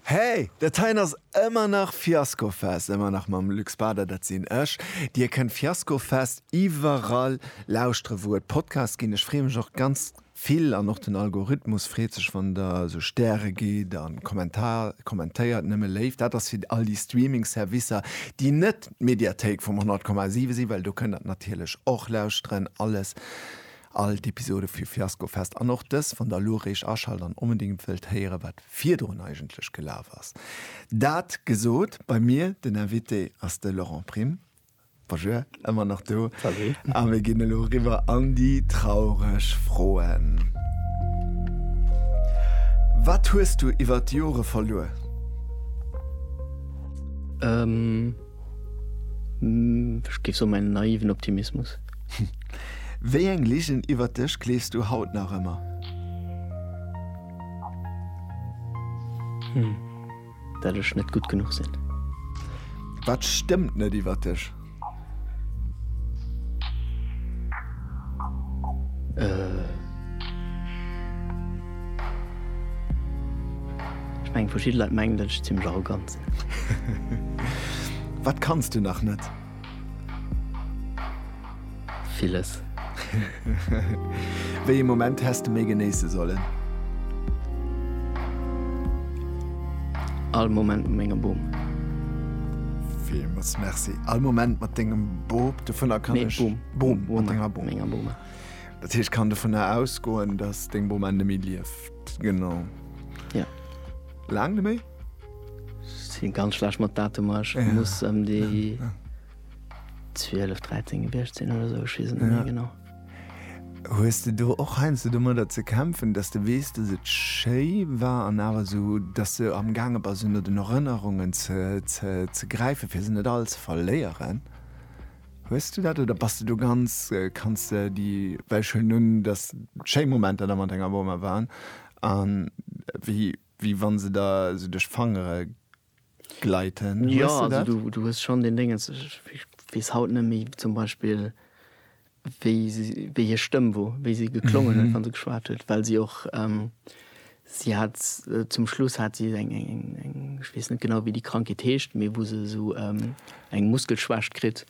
Hey, dat heien ass ëmmer nach Fiaskofest, ëmmer nach mam Luc Spader, dat sinn ech. Dir kënnt Fiaskofest iwwerall lauschtere wou et Podcasts ginn. Ech freeë mech och ganz vill an och den Algorithmus freet sech wann der esou Stäre gitt a Kommentar kommentéiert. Nëmme Léift, dat ass fir all déi Streaming Servicer déi net d'Mediathéik vum 100,7 sinn, well do kënnt der et natierlech och lauschteren. Alles All d'Episode vu Fiasko Fest an och dës wann der elo eréischt aschalt an onbedingt wëllt héieren wat virdrun eigentlech gelaf ass. Dat gesot, bei mir den Invité ass de Laurent Prim. Bonjour, ëmmer nach do. Salut. A mir ginn elo eriwwer an déi traureg Froen. Wat hues du iwwert d'Jore verluer? Ech géif soen, en naiven Optimismus. Wéi eng Ligen iwwert dech gleefs du haut nach ëmmer? Dat ech net gutt genuch sinn. Wat stëmmt net iwwert dech? Ech mengen, verschidde Leit mengen, dat ech zimmlech arrogant sinn. Wat kanns du nach net? Villes. Wéi ee Moment häss de méi genéisse sollen? All Moment mat mengem Bom. Villmools Merci. All Moment mat dengem Bop, dovunner kann ech. Nee, Bom. Bom, mat denger Bom. Mat menger Bom. Dat heescht, ech kann dovunner ausgoen, dass deng Bom enn neméi lieft. Genau. Ja. Laang neméi? Sin ganz schlecht mat Datumer, ech ja. muss ëm déi 12 13 gewiescht sinn oder sou, ech weess et net méi genau. Hues de do och heiansdo domadder ze kämpfen, datt de weess, datt et schéi war an awer esou, datt de am gaange bass ënner den Erënnerungen ze ze ze gräifen, fir se net all ze verléieren? Hues du dat oder bass de do ganz kanns de déi, well ech huelen un, datt schéi Momenter der mat denger Boma waren an wéi Wéi wann se der sou duerch d'Fangere gleiten. Jo, also du hues schonn deen Déngens, ech weess haut net méi zum Beispill, wéi si, wéi hir Stëmm wor, wéi si geklongen huet, wa se geschwat huet, well si och, si hat zum Schluss hat si eng, ech weess net genau, wéi déi Krankheet heescht, mee wou se esou eng Muskelschwächt kritt,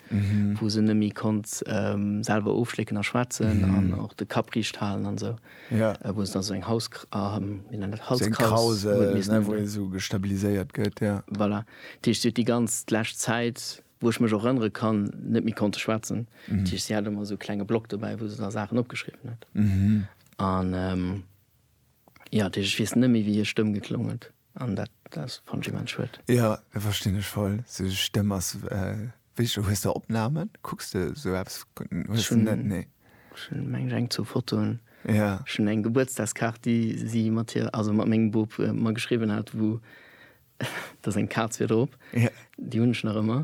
wou se net méi konnt selwer ofschlécken a schwätzen an och de Kapp riicht halen an esou. ja wou se da seng Haus wéi nennt dat Halskraus wou ee sou gestabiliséiert gëtt ja voilà dat heescht si huet déi ganz d'lescht Zäit wou ech mech och erënnere kann net méi konnte schwätzen dat heescht si hat ëmmer sou klenge Block dobäi wou se da Saachen opgeschriwwen huet an ja dat heescht ech weess net méi wéi hir Stëmm geklong huet. An dat ass fand ech immens schued. Jo, dat verstinn ech voll. Sou Stëmm ass wéi hues de Opnamen? Kucks de sou eppes? Hues de net? Nee. Ech hunn mengen ech eng zwou Fotoen. Jo. Ech hunn eng Gebuertsdagskaart déi si mat hir, also mat mengem Bub mer geschriwwen hat wou dass eng Kaz wier drop. Jo. Déi hunn ech nach ëmmer.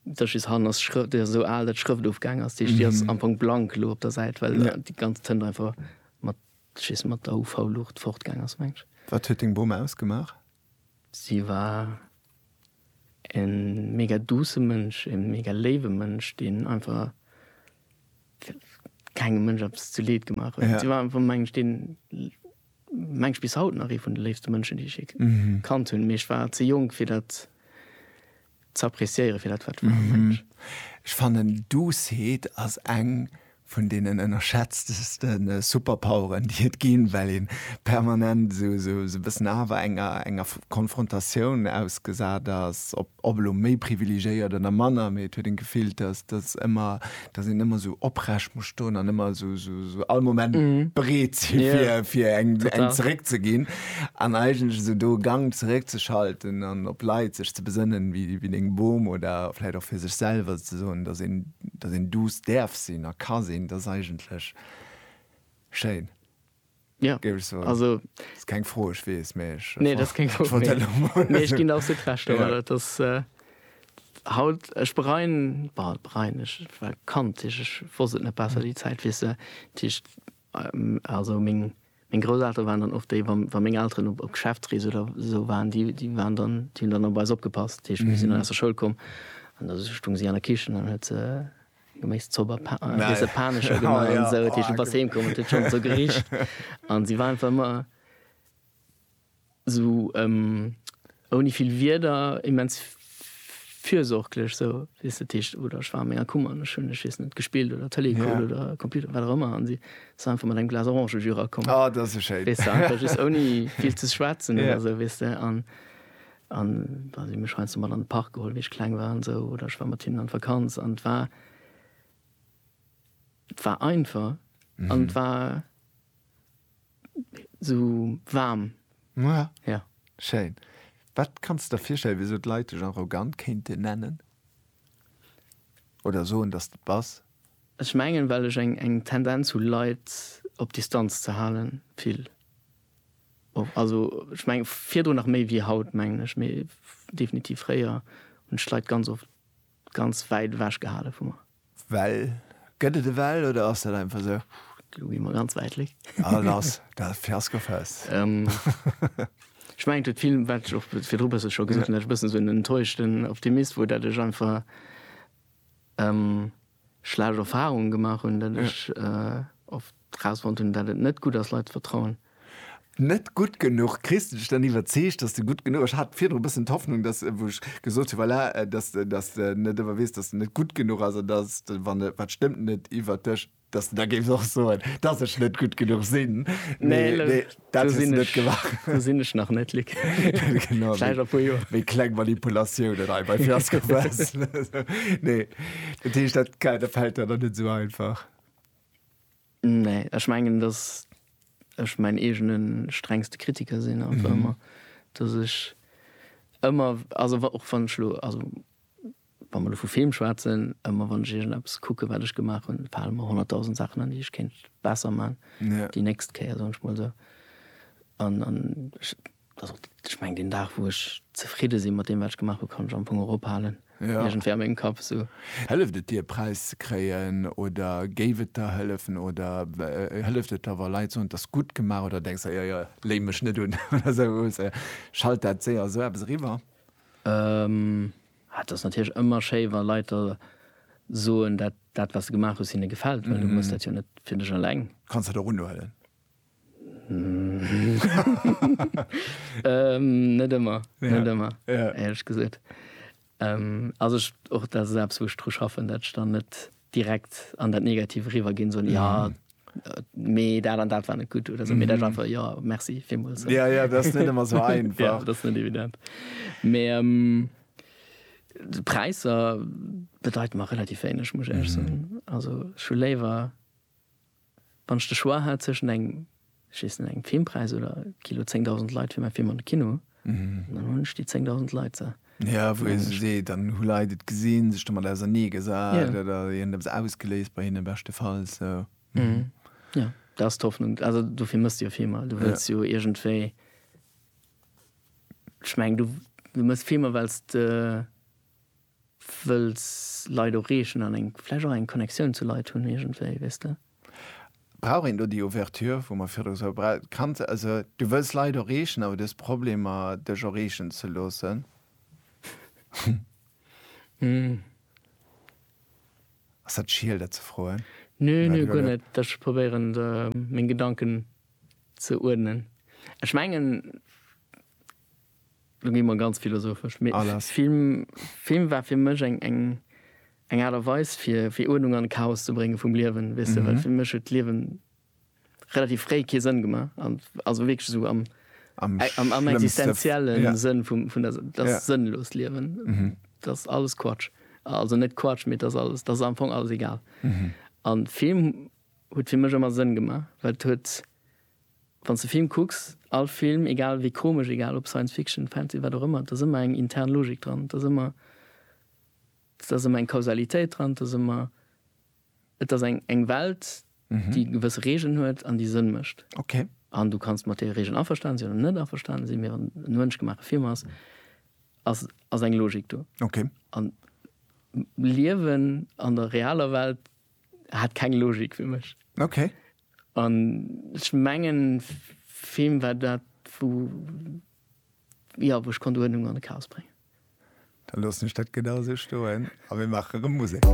Dat ass just hannen ass d'Schrë, déi ass esou al dat d'Schrëft ofgaangen ass. Déi ass am Fong blank elo op der Säit well déi ganz Tënt einfach mat. Dass jiss mat der UV-Luucht fortgaang ass, mengs de? Wat huet deng Bom ausgemaach? Si war e mega duusse Mënsch, e mega léiwe Mënsch, deen einfach kengem Mënsch eppes zu Leed gemaach huet. Si war einfach, mengen ech, deen, mengen ech, bis haut nach ee vun de léifste Mënschen, déi ech jee kannt hunn. Mee ech war ze jonk, fir dat ze appreciéieren fir dat wat war. Mensch. Ech fannen Doucet ass eng vun deenen ënnerschätzteste Superpoweren déi et ginn, well een permanent sou e bëssen awer enger enger Konfrontatioun ausgesat ass, ob elo méi privilegéiert oder manner, mee et huet een d'Gefill dass dass ëmmer dass een ëmmer sou oprecht muss stoen an ëmmer sou, sou, sou all Moment bereet si fir, Ja. fir eng, eng Total. zeréck ze ginn an eigentlech esou do e Gang zeréck ze schalten an op Leit sech ze besënnen, wéi, wéi deng Bom oder vläit och fir sech selwer ze soen, dass een, dass een duuss däerf sinn a ka sinn, dat ass eigentlech schéin. Ja, also ass keng Fro ech weess méi ech nee, dat keng Fro méi ech ginn absolut Recht domat dat ass haut ech bereien bal bereien ech war Kand Tisch ech wosst et net besser déi Zäit weess de Tisch also meng meng Grousseltere waren dann och déi wa wa meng Elteren op op Geschäftsrees oder esou waren déi déi waren dann déi hunn dann op eis opgepasst Tisch mir sinn dann aus der Schoul komm an da stung si an der Kichen an huet se geméiss Zober pa äh, Nein. Ese Panescher gemaach oh, ja. an sou. Teech du bass heem komm, huet schon sou gericht an si war einfach ëmmer sou ähm, ouni vill Wierder immens fürsorglech so wis du Techt oder schwa mé Kummer an schön schissen net gespielt oder Tele ja. oder Computer wat rëmmer an sie so einfach mal ein Glas orange Jura kommen oh, ah, das ist schön. Weißt du, einfach just ouni viel ze schwätzen ja. oder so wis du an An bah, si hu mech heiansdo mat an de Park geholl, wéi ech kleng war an esou, oder ech war mat hinnen an d'Vakanz. An et war, et war einfach an et war esou waarm. Ja. Ja. Schéin. Wat kanns de der virstellen, wéi esou d'Leit dech arrogant kéinten nennen oder soen, dass de et bass? Ech mengen, well ech eng Tendenz hu Leit op Distanz ze halen, vill. Och, also ech mengen virdrun nach méi wéi haut, mengen ech, mee definitiv fréier hunn ech d'Leit ganz oft ganz wäit ewech gehale vu mer. Well? Gëtt et e Well oder ass dat einfach esou? Lo gi mer ganz wäit weg. A lass dat Fiaskofest. Ech mengen et huet vill, wat ech och virdru e bësse scho gesot hunn, dat ech e bëssen esou en enttäuschten Optimist wor, dat ech einfach, schlecht Erfahrungen gemaach hunn, datt ech oft rausfonnt hunn, datt et net gutt ass, Leit ze vertrauen. Net gutt genuch. Kriss de dech dann iwwerzeegt, datt de gutt genuch ass? Ech hat virdru e bëssen d'Hoffnung, datt, wou ech gesot hunn, voilà, datt, datt de net ëmmer weess, datt de net gutt genuch ass an datt de, wann e, wat stëmmt net iwwert dech, datt de da géifs och soen, datt ech net gutt genuch sinn. Mee, mee. Dat hues du net gemaach. Do sinn ech nach net, Luc. Genau. Vläicht a puer Joer. Wéi kleng Manipulatiounen hei bei Fiasco Press. Nee. Dat heescht, dat dat fält der dann net esou einfach? Nee. Ech mengen, datt ech mäin eegene strengste Kritiker sinn einfach ëmmer. Datt ech ëmmer, also wa och wann ech elo, also Wa mer lo vu Film schwätzen, ëmmer wann ech iergendeppes kucken, wat ech gemaach hunn, fale mer honnertdausend Saachen an, déi ech kéint besser man déi nächst Kéier, soen ech mol esou. An, an ech, also ech mengen, deen Dag, wou ech zefridde sinn mat deem, wat ech gemaach hunn, kann ech am Fong och ophalen, iergendwéi a mengem Kapp esou. Hëlleft et dir, e Präis ze kréien? Oder géif et der hëllefen? Oder hëlleft et der, wa Leit soen, 't ass gutt gemaach? Oder denks der, Jo, jo, léi mech net un oder esou, schalt dat séier esou eppes eriwwer? Et ass natierlech ëmmer schéi, wa Leit der soen, dat, dat wat s de gemaach hues, hinne gefält, well du muss dat jo net fir dech eleng. Kanns dat och unhuelen? Net ëmmer, net ëmmer, éierlech gesot. Also ech, och dat ass eppes wou ech dru schaffen, dat ech dann net direkt an dat Negativ eriwwer ginn, soen, jo mee dat an dat war net gutt oder sou, mee dat war einfach jo, merci villmools. Ja, ja, dat ass net ëmmer sou einfach. Ja, dat ass net evident. Mee d'Präisser bedeiten mer relativ wéineg, muss ech éierlech soen. Also ech hu léiwer, wann ech de Choix hätt zwëschen engem, ech weess net, engem Filmpreis oder Kino 10.000 Leit fir mäi Film an de Kino, An dann hunn ech déi 10.000 Leit se. Jo, wou ee sech seet, dann hu Leit et gesinn, sech domat ausernee gesat oder et huet eppes ausgeléist bei hinnen, beschtefalls. Jo, dat ass d'Hoffnung. Also dofir méchs de jo Filmer. Du wëlls jo iergendwéi, ech mengen, du méchs Filmer, well s de wëlls Leit och reechen an vläicht och eng Connectioun zu Leit hunn iergendwéi, weess de. Brauch een do déi Ouverture, wou mer virdru gesot hunn, d'Kand, also du wëlls d'Leit erreechen, awer du hues Problemer, dech erreechen ze loossen? Ass dat schiel, dat ze froen? Nö, nö, guer net. Ech probéieren, meng Gedanken ze uerdnen. Ech mengen, Lo gi mer ganz philosophesch. Mee Ah, lass. Film, Film war fir mech eng, eng, eng Aart a Weis fir, fir Uerdnung an Chaos ze brénge vum Liewen, weess de, well fir mech huet d'Liewen relativ fréi kee Sënn gemaach, an also wierklech esou am, Am am, am schlëmmste- existenziellen Ja. Sënn vum, vun der, dat Ja. sënnlost Liewen, dat ass alles Quatsch. Also net Quatsch, mee dat ass alles, dat ass am Fong alles egal. An Film huet fir mech ëmmer Sënn gemaach, well et huet, Wann s de Film kucks, all Film, egal wéi komesch, egal ob Science Fiction, Fantasy, wat och ëmmer, et ass ëmmer eng intern Logik dran, et ass ëmmer, et ass ëmmer eng Kausalitéit dran, et ass ëmmer, et ass eng, eng Welt, déi gewësse Regeln huet an déi Sënn mécht. An du kanns mat deene Regeln averstanen sinn oder net averstanen sinn, mee wann et e mënschgemaache Film ass, ass, ass eng Logik do. A Liewen an der realer Welt hat keng Logik fir mech. An ech mengen, Film war dat, wou, jo, wou ech konnt Uerdnung an de Chaos bréngen. Da loossen ech dat genau esou stoen a mir maache erëm Musek.